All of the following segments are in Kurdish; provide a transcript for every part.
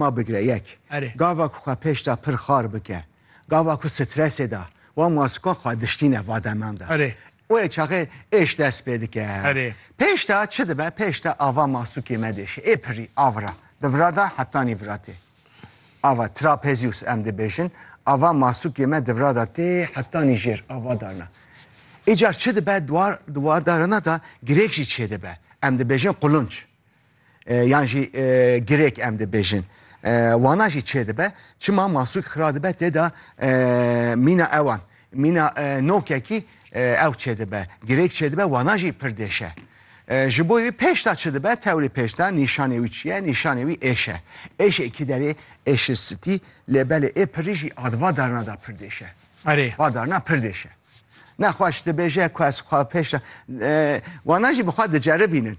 Ma bigire yek. Erê. Gava ku xwe pêş de pir xar bike, gava ku stresê de wan masika xwe diştîne va deman de. Erê. Wê çaxê êş dest pê dike. Erê. Pêş de çi dibe? Pêş de ava masûkê me dêşe. Ê pirî avira. Di vira de hetanî vira tê. Ava trapezius em dibêjin. Ava masûkê me di vira de tê hetanî jêr ava darna. Îcar çi dibe? Di wa darina de girêk jî çêdibe. Em dibêjin qulunc. Yan jî girêk em dibêjin. Wana jî çêdibe, çima masûk xira dibe tê de mîna ewan. Mîna nokekî ew çêdibe. Girêk çêdibe, wana jî pir dêş e. Ji bo wî pêşta çi dibe, tewrê pêşta nîşanê wî çi ye? Nîşanê wî êş e. Êşê kî derê êşi sitî, lê belê ê pirî jî ad va darina da pir dêş e. Erê. Va darina pir dêş e. Nexweş dibêje ku ez xwe pêşta wana jî bi xwe diceribînin.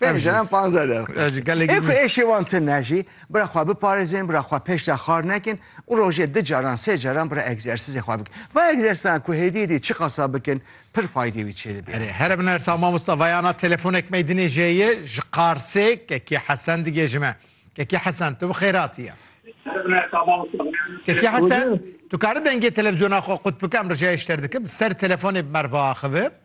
Pênc Ev jî. em panze de. Ev jî gelekî Ê ku nû- êşê wan tune jî bira xwe biparêzin, bira xwe pêş de xar nekin û rojê di caran sê caran bira egzersîzê xwe bikin. Va egzersîzan ku hêdî hêdî çiqasa bikin pir faydê wî çê dibe. Erê here min ersa mamosta vayana telefonek me dinê jeyê ji Qarsê Kekî Hesen digêjim e. Kekî Hesen tu bi xêr hatiye. Kekî Hesen tu kari dengê televîzyona xwe qut bike em ricayê ji te dikim ser telefonê bi merva axivim.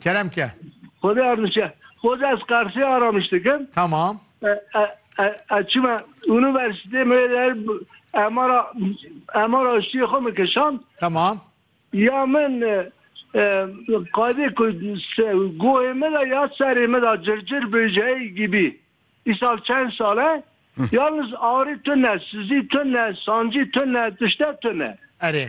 Kerem ke. Xwedê erdişe. Xwedê ez Qarsê Aramiş dikim. Tamam. Ez çima universitê me der emara emara aştiyê xwe min kişand. Tamam. Ya min qadê ku goyê me de ya serê me de circir bêjeyê gibî. Îsal çend sale yalnız arê tune, sizî tune, sancî tune, tişte tune. Erê.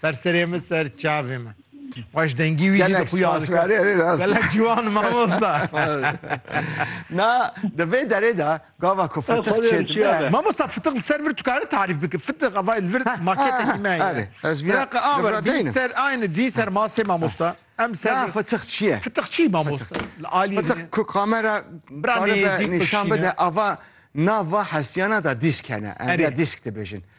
Ser serê min ser çavê min. Xweş dengî wî jî dixuya gelek ciwan mamosta. Na di vê derê de gava ku fitiq çêdibe. Mamosta fitiq li ser vir tu karî tarîf bikî. Fitiq ava li vir maketekî me ye. Ez vîya aver dî ser aynê dî ser masê mamosta. Em ser Na fitiq çi ye? Fitiq çi mamosta? Li aliyê Fitiq ku kamera nîşan bide ava nava hesiyana da dîsk hene. Em vîya dîsk dibêjin.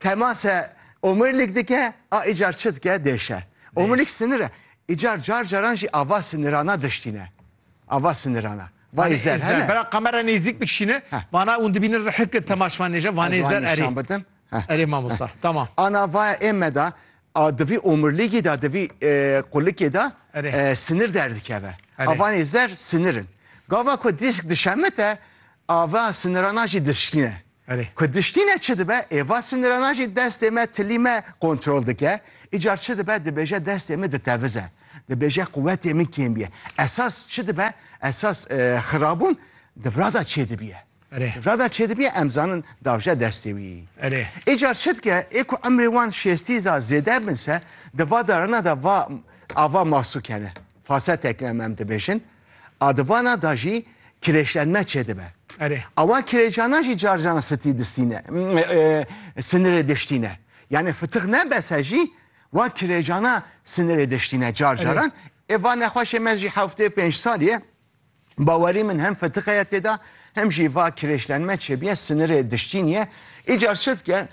Temase omurilik dike a îcar çi dike dêşe. Omurilik sinir e. Îcar car caran jî ava sinirana diştîne. Ava sinirana. Vay zer Zer hene. bera kamera nêzîk bikişîne. Heh. Vana ûn dibînin rihek de temaşvan nêje vanê Ez wan zer erê. nîşan bidim. Heh. Erê mamosta. Tamam. Ana vaya ême de a divî omuriligî de divî e, qulikê de Erê. e, sinir derdikeve. Erê. Avanê zer sinirin. Gava ku dîsk dişemite ava sinirana jî diştîne. Ku diştîne çi dibe? Êva sinirana jî destê me, tilî me kontrol dike. Îcar çi dibe? Dibêje destê min ditevize. Dibêje quwetê min kêm bîye. Esas çi dibe? Esas xirabûn di virada çê dibiye. Di virada çê dibiye em zanin davje destê wî. Îcar çi dike? Ê ku emrê wan şêstî za zêde bin se, di va darana de va ava masû kene. Fasetek me em dibêjin. A di vana da jî kirêjtenme çêdibe. Erê. Awa kirêjana jî car caran sitî distîne, sinirê diştîne. Yanê fitix nebese jî wa kirêjana sinirê diştîne car caran. Ê va nexweşê me jî heftê pênc salî bawerî min hem fitix heye têda hem jî va kirêjtenme çêbiye sinirê diştînî ye. Îcar çi dike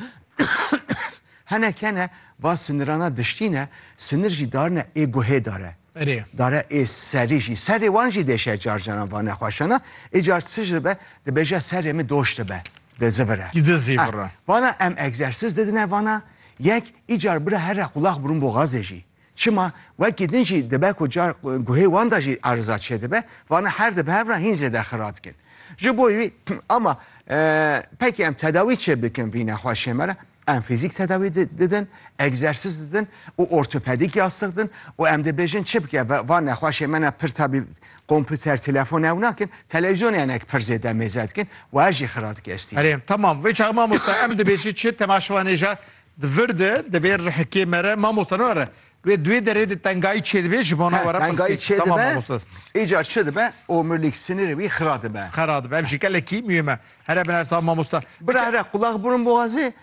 Hinek hene va sinirana diştî ne, sinir jî darine ê guhê dare. Erê. Dare ê serî jî. Serê wan jî dêşe car caran va nexweşana. Ê car tij dibe, dibêje serê min doş dibe, di zivire. Di zîvire. Vana em egzersiz didine vana, yek, îcar bira here qulaq burun boxazê jî. Çima wekî din jî dibe ku car guhê wan de jî ariza çêdibe, vana her di bi hev re hîn zêde xira dikin. Ji bo wî ama pekî em tedawî çê bikin vî nexweşê me re, em fîzîk tedawî didin, egzersîz didin û ortopedîk yastix din û em dibêjin çi bike va nexweşê me ne pir tabî komputer, telefon ew nakin, televîzyonê hinek pir zêde mêze dikin, wer jî xira dike estî. Erê, temam. Vê çax mamosta em dibêjin çi temaşvanê ja Di vir de divê rihikê me re mamosta ne re. Wê duê derê de tengayî çêdibe ji bo na were pirsgirêk. Tengayî çêdibe. Tamam mamosta. Îcar çêdibe omurlîk sinirê wî xira dibe. Xira dibe. Ev jî gelekî muhim e. Here bi nersa mamosta. Bira here qulaq burun boxazê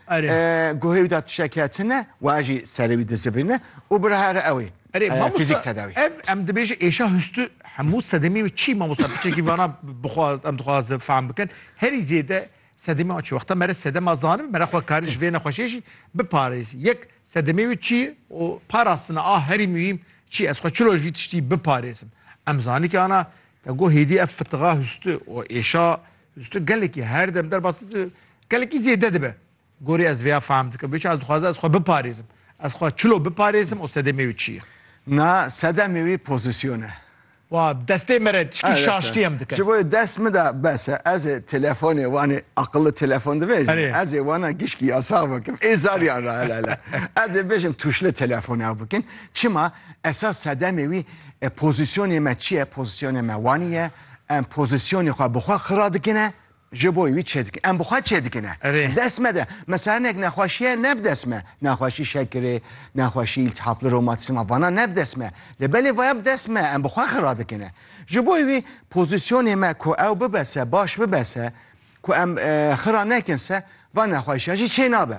guhê wî de tişek heye tune waye jî serê wî dizivîne û bira here ew ê fîzîk tedawî. Ev em dibêje êşa hustû hemû sedemê wê çi mamosta piçekî vana bixwe em dixwazin fehm bikin herî zêde Sedemê wan çi ye? Wexta mere sedema zanibin, mere xwe kari ji vê nexweşiyê jî biparêzî. Yek, sedemê wî çi ye û parastina a herî muhîm çi ye? Ez xwe çilo ji vî tiştî biparêzim? Em zanîkê ana te got hêdî ev fitiga hûsti û êşa hûsti gelekî her dem derbas dibe, gelekî zêde dibe. Gorî ez vêya fehm dikim. Bêçû ez dixwazim ez xwe biparêzim. Ez xwe çilo biparêzim û sedemê wî çi ye? Na, sedemê wî pozîsyon e. Wa bi destê me re çikî şaştiyem dike. Ji bo yê dest min de bes e. Ez ê telefonê wan ê aqilli telefon dibêjim. Ez ê wan gişkî yasax bikim. Ê zariyan re hele hele. Ez ê bêjim tuşli telefon ew bikin. Çima? Esas sedemê wî pozîsyonê me çi ye? Pozîsyonê me wanî ye. Em pozîsyonê xwe bi xwe xira dikine. Ji bo wî çê dikin. Em bi xwe çê dikin e. Erê. Li dest me de. Mesela hinek nexweşiye ne bi dest me. Nexweşî şekirê, nexweşî îltihapli romatîsma vana ne bi dest me. Lê belê vaya bi dest me em bi xwe xira dikin e. Ji bo wî pozîsyonê me ku ew bibe se, baş bibe se, ku em xira nekin se, van nexweşiyan jî çê nabe.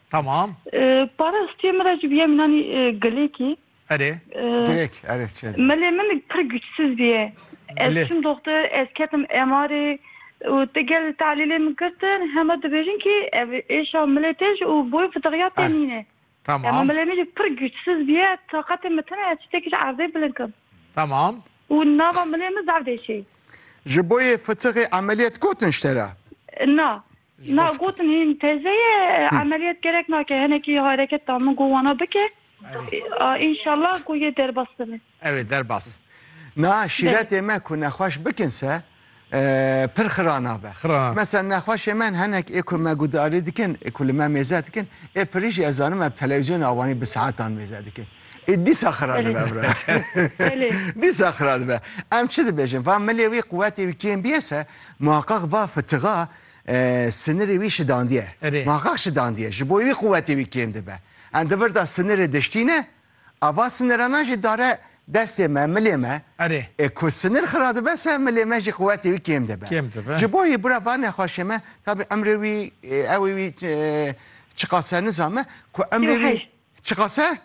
Tamam. Para stiyê min re jî bîye min anî gilêkî. Erê. Gilêk erê çê. Milê min pir güçsiz bîye. Ez çûm doxtir, ez ketim MR'ê û te gel talîlê min girtin hema dibêjin kî ev êşa milê te jî û boy fidixiya te nîne. Tamam. Hema milê min jî pir güçsiz bîye, taqetê min tune ez çitekî ji erdê bilind kim. Tamam. Û nava milê min zaf dêşê. Ji boyê fitixê emeliyet gotin ji te re? Na. Ji bo Na fikirim. gotin hîn teze ye, emeliyat gerek nake, hinekî hareket da min ku wana bike. A înşallah ku yê derbas bibe. Ew ê derbas. Na şîretê me ku nexweş bikin se pir xira nabe. Xira. Mesen nexweşê me hinek ê ku me guhdarî dikin, ê ku li me mêze dikin, ê pirî jî ez zanim ev telewîzyona wanî bi saetan mêze dikin. Ê dîsa xira dibe em re. Belê. Dîsa xira dibe. Em çi dibêjin? Va milê wî quwetê wî kêm bîye se muheqeq va fitixa sinirê wî şidandiye. Erê. Muheqeq şidandiye. Ji bo wî quwetê wî kêm dibe. Em di vir de sinirê diştîne. A va sinirana jî dare destê me, milê me. Erê. Ê ku sinir xira dibe se milê me jî quwetê wî kêm dibe. Kêm dibe. Ji bo wî bira va nexweşê me tabî emrê wî ewê wî çiqas e nizame ku emrê wî Çiqas e?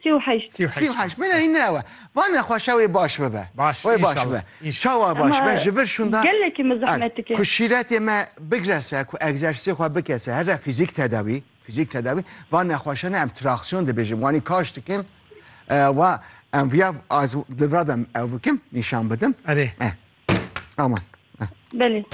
Sî û heşt. Sî û heşt. Sî û heşt. Bine hîn ne ew e. Vane xwe şewê baş bibe. Baş. Wê baş bibe. Çawa baş bibe? Ji vir şûnda. Gelekî min zehmet dike. Ku şîretê me bigre ser, ku egzersîzê xwe bike ser, here fîzîk tedawî, fîzîk tedawî, van nexweşan em traksiyon dibêjin, wanî kaş dikin, wa em viya az li vir de em ew bikim, nîşan bidim. Erê. Aman. Belê.